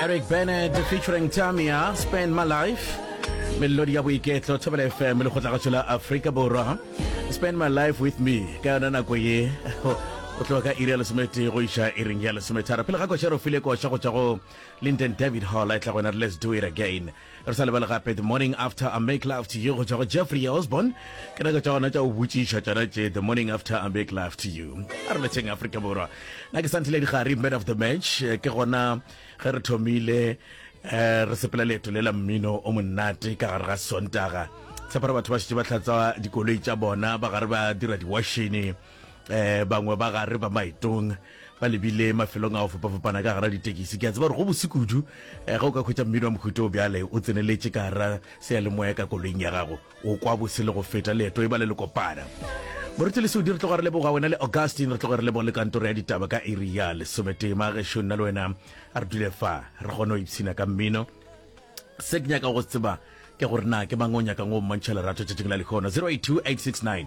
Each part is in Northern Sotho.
Eric Bennett featuring Tamia, Spend My Life. Melodi ya boiketlo, Thobela FM le kgotlagatšo la Afrika Borwa. Spend My Life With Me, ka yona nako ye. o tloga ka iri ya lesometee go iša iring ya lesometharo pele ga koša re file koša go tšwa go linden david hall a e tla gona re let's do it again Re sa lebale gape The Morning After I Make Love to You go tšwa go Jeffrey Osborne. Ke nako tša gona tša go botšiša tšona tše The Morning After I Make Love to You. A re letšeng Afrika Borwa. Na ke Santlile Digari, Man of the Match. Ke gona ge re thomile eh, re sepela leeto le la mmino o monate ka gare ga Sontaga. Tshepara batho ba šetše ba tlatsa dikoloi tša bona ba gare ba dira diwašene eh bangwe ba gare ba maetong ba lebile mafelong a go fapafapana ka gara ditekisi ke a tseba gore go bose kudu eh, ga o ka khwetsa mmino wa mohuto o bjale o tseneletše ka gara seyalemoya ka koloing ya gago o kwa bose le go feta leeto e ba le le kopana moruti le seudi re tloga re leboga wena le augustin re tloga re leboga le kantoro ya ditaba ka iri ya lesometee maagešo nna le wena a re dule fa re kgone go ipshina ka mmino se ke nyaka go tseba ke gore na ke mang o nyakang o mmantšha lerato tšatšing la lekgono 082 869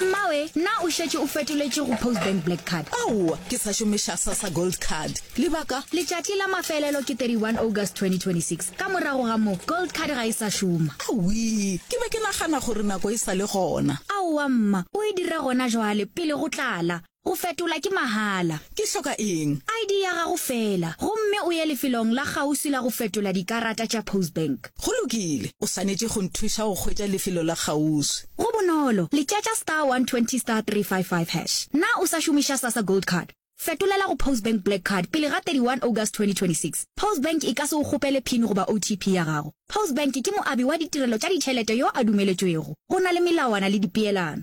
Mmawe, na o šetše o fetoletše go Postbank Black Card? Aowa, ke sa šomiša Sassa Gold Card. Lebaka? Letšatši la mafelelo ke 31 August 2026. Ka morago ga moo, Gold Card ga e sa šoma. Awii, ke be ke nagana gore nako e sa le gona. Aowa mma, o e dira gona jwale, pele go tlala. Go fetola ke mahala. Ke hloka eng? ID ya gago feela, gomme o ye lefelong la kgauswi la go fetola dikarata tša Postbank. Go lokile. O swanetše go nthuša go hwetša lefelo la kgauswi. Go bonolo, le tšatša star 120 star 355 hash. Na o sa šomiša Sasa Gold Card? Fetolela go Postbank Black Card pele ga 31 August 2026. Postbank e ka se go kgopele pin goba OTP ya gago. Postbank ke moabi wa ditirelo tša ditšhelete yo a dumeletšwego. Go na le melawana le dipeelano.